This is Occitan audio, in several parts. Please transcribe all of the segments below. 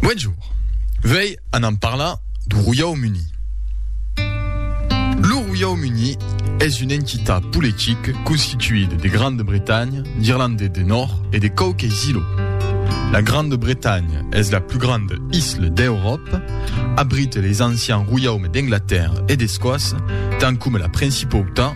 Bonjour, vei anam parlar du Royau Muni. Lo Royau Muni es un entitat politic constituid de Grande Bretanha, d'Irlande de Nòrd e de quauques ilots. La Grande Bretanha es la plus grande isle d'Euròpa, abrite les ancians royaumes d'Anglatèrra e d'Escòcia, tant coma la Principautat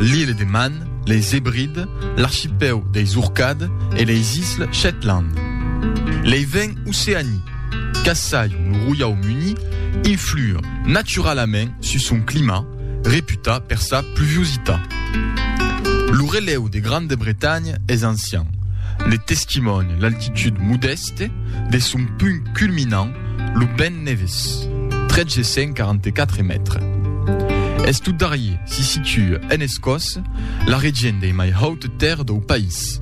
L'Ile de Man, les Hébrides, l'archipèu deis Orcades e les Isles Shetland. Lei vents oceanics, qu'assajon lo Roiaumuni, influen naturalament sus son clima, reputat per sa pluviositat. Lo relèu de Grande Bretanha es ancian, ne testimònia l'altitud modèste de son punt culminant Lo Pèn Neves, 1344 mètres. Es tot darrier si situa en Escòs, la region dei mai haute terres dau país.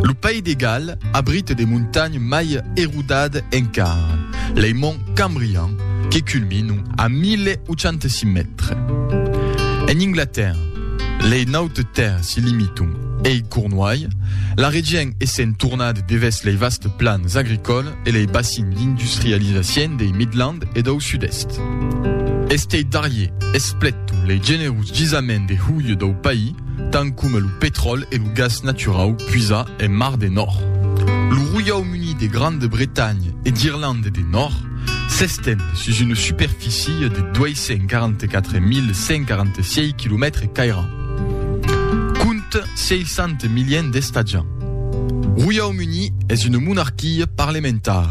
Lo País de Gal abrite de montagnes mai erodades encara, lei Monts Cambrian que culminan a 1086 mètres. En Inglatèrra, lei nautes terres si limitan Ei Cornuai, la regien essent tornat devès lei vasts plans agricòles e lei bacins d'industrializacien dei Midland e dau Sud-Èst. Estei darrier espleton lei generos gisament de huile dau país, tant coma lo petròl e lo gas naturau puisat en Mar de Nòrd. Lo Roiaum Unit de Grande Bretanha e d'Irlande de Nòrd s'estend sus una superfície de 244.146 quilomètres cairats. Compte 600 miliens d'estatjants. Roiaum Uni es una monarquia parlementari.